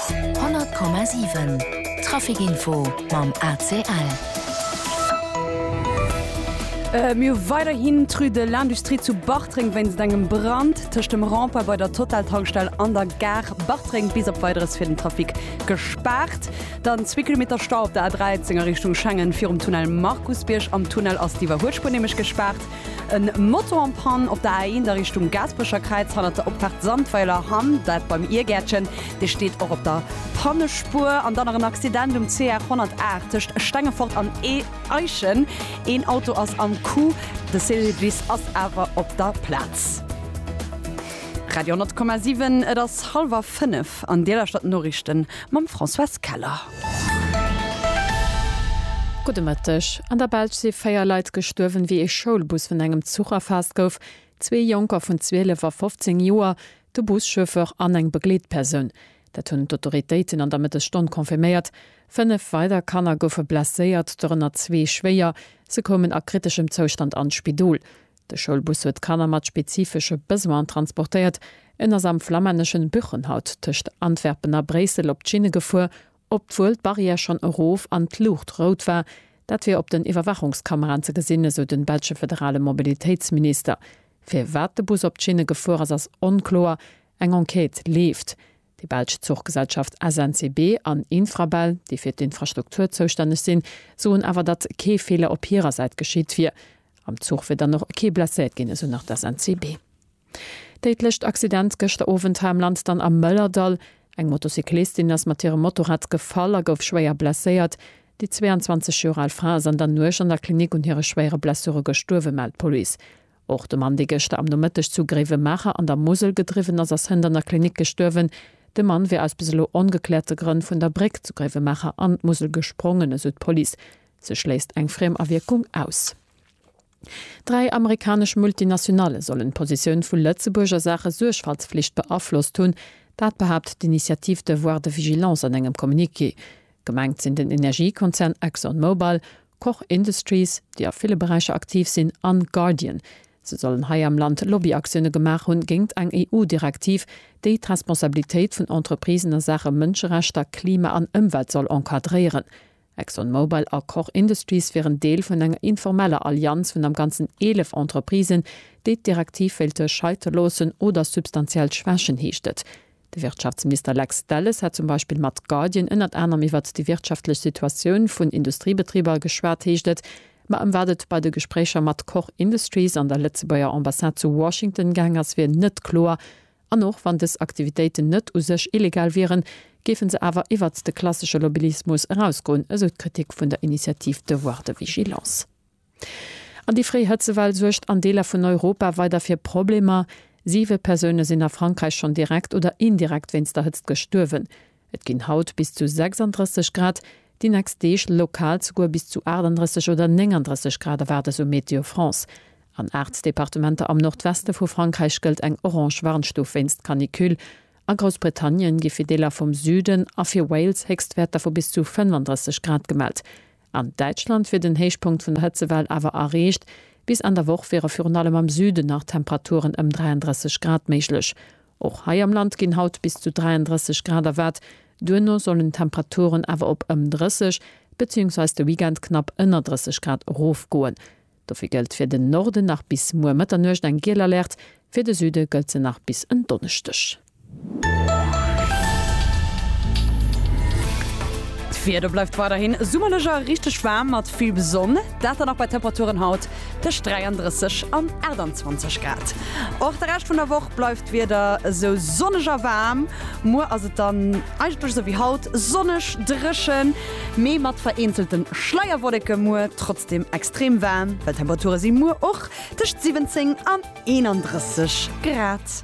100,7 Trafic-Info mam ACL. Mir hu weiderhin d'Rue de l'Industrie zu Bartreng wéinst engem Brand tëscht dem Rond-point bei der Total-Tankstell an der Gare Bartreng bis op Weideres fir den Trafic gespaart. Dann zwee Kilometer Stau op der A13 a Richtung Schengen virum Tunnel Markusbierg. Am Tunnel ass d'Iwwerhuelspuer nämlech gespaart. E Motor en panne op der A1 a Richtung Gaasperecherkräiz hannert der Opfaart Sandweiler Hamm, dat beim Iergäertchen. Dee steet och op der Pannespuer. An dann nach en Accident um CR 108 tëscht Stengefort an Eichen. Een Auto ass am Coup, de Service ass awer op der Plaz. Radio 10,7 Et ass hallwer fënnef an Dir lauschtert d'Noriichten mam Françoise Keller. Gudde Mëtteg. An der Belsch si véier Leit gestuerwen, wéi ee Schoulbus vun engem Zuch erfaasst gouf. Zwee Jonker vun 12 a 15 Joer, de Buschauffeur an eng Begleetpersoun. Dat hunn d'Autoritéiten an der Mëttesstonn confirméiert. Fënnef weider Kanner goufe blesséiert, dorënner zwee schwéier. Se koumen a kriteschem Zoustand an d'Spidol. De Schoulbus huet Kanner mat spezifesche Besoinen transportéiert. En ass am flammänneschen Buchenhout tëscht Antwerpen a Bréissel op d'Schinne gefuer, obwuel d'Barrière schonn erof an d'Luucht rout war. Dat wier op den Iwwerwaachungskameraen ze gesinn, esou de belsche federale Mobilitéitsminister. Firwat de Bus op d'Schinne gefuer ass, ass onkloer. Eng Enquête leeft. Déi belsch Zuchgesellschaft SNCB an Infrabel, déi fir d'Infrastruktur zoustänneg sinn, soen awer, datt kee Feeler op hirer Säit geschitt wier. Am Zuch wier dann och kee blesséiert ginn, esou nach d'SNCB. Déidlecht Accident gëschter Owend hei am Land dann am Mëllerdall. Eng Motocyclistin ass mat hirem Motorrad gefall a gouf schwéier blesséiert. Déi 22 Joer al Fra ass an der Nuecht an der Klinik un hire schwéiere Blessure gestuerwen, mellt d'Police. Och de Mann, dee gëschter am Nomëtteg zu Gréiwemaacher an der Musel gedriwwen ass, ass hënt an der Klinik gestuerwen. De Mann wier aus bis elo ongekläerte Grënn vun der Bréck zu Gréiwemaacher an d'Musel gesprongen, esou d'Police. Se schléisst eng Friemawierkung aus. Dräi amerikanesch Multinationale sollen d'Positioun vu Lëtzebuerg a Saache Suergfaltsflicht beaflosst hunn. Dat behaapt d'Initiative Devoir de vigilance an engem Communiqué. Gemengt sinn den Energiekonzern Exxon Mobil, Koch Industries, déi a ville Beräicher aktiv sinn, an Guardian. Se sollen hei am Land Lobbyaktioune gemaach hunn géingt eng EU-Direktiv, déi d'Responsabilitéit vun Entreprisen a Saache Mënscherechter, Klima an Ëmwelt soll encadréieren. Exxon Mobil a Koch Industries wieren Deel vun enger informeller Allianz vun am Ganzen 11 Entreprisen, déi d'Direktiv wéilte scheite loossen oder substantiell schwächen, heescht et. De Wirtschaftsminister Lex Delles hat zum Beispill mat Guardian ënnert anerem iwwert déi wirtschaftlech Situatioun vun Industriebetriber geschwat, heescht et. Ma ëm wat et bei de Gespréicher mat Koch Industries an der Lëtzebuerger Ambassade zu Washington gaang ass, wier net kloer. An och wann dës Aktivitéiten net u sech illegal wieren, géife se awer iwwert de klassesche Lobbyismus erausgoen, esou d'Kritik vun der Initiative Devoir de vigilance. An déi fréi Hëtzewell suergt an Deeler vun Europa weider fir Problemer. Siwe Persoune sinn a Frankräich schonn direkt oder indirekt wéinst der Hëtzt gestuerwen. Et ginn haut bis zu 36 Grad, déi nächst Deeg lokal souguer bis zu 38 oder 39 Grad erwaart esou Météo France. An aacht Departementer am Nordweste vu Frankräich gëllt eng orange Warnstuf wéinst Canicule. A Groussbritannien gi fir Deeler vum Süden a fir Wales Héchstwäerter vu bis zu 35 Grad gemellt. An Däitschland wier den Héichpunkt vun der Hëtzewell awer erreecht. Bis Enn der Woch wiere virun allem am Süden nach Temperaturen ëm 33 Grad méiglech. Och hei am Land ginn haut bis zu 33 Grad erwaart, duerno sollen d'Temperaturen awer op ëm 30 beziehungsweise de Weekend knapp ënner 30 Grad erofgoen. Dofir gëllt fir den Norden nach bis muer Mëtternuecht eng giel Alerte, fir de Süde gëllt se nach bis en Donneschdeg. D'Wieder bleift weiderhin summerlech a richteg waarm mat vill Sonn, dat dann och bei Temperaturen haut tëscht 33 an 28 Grad. Och de Rescht vun der Woch bleift d'Wieder esou sonneg a waarm, muer ass et dann. Eigentlech esou wéi haut, sonneg, dréchen, mee mat vereenzelten Schleierwolleken. Muer trotzdem extrem waarm, well d'Temperature si muer och tëscht 17 an 31 Grad.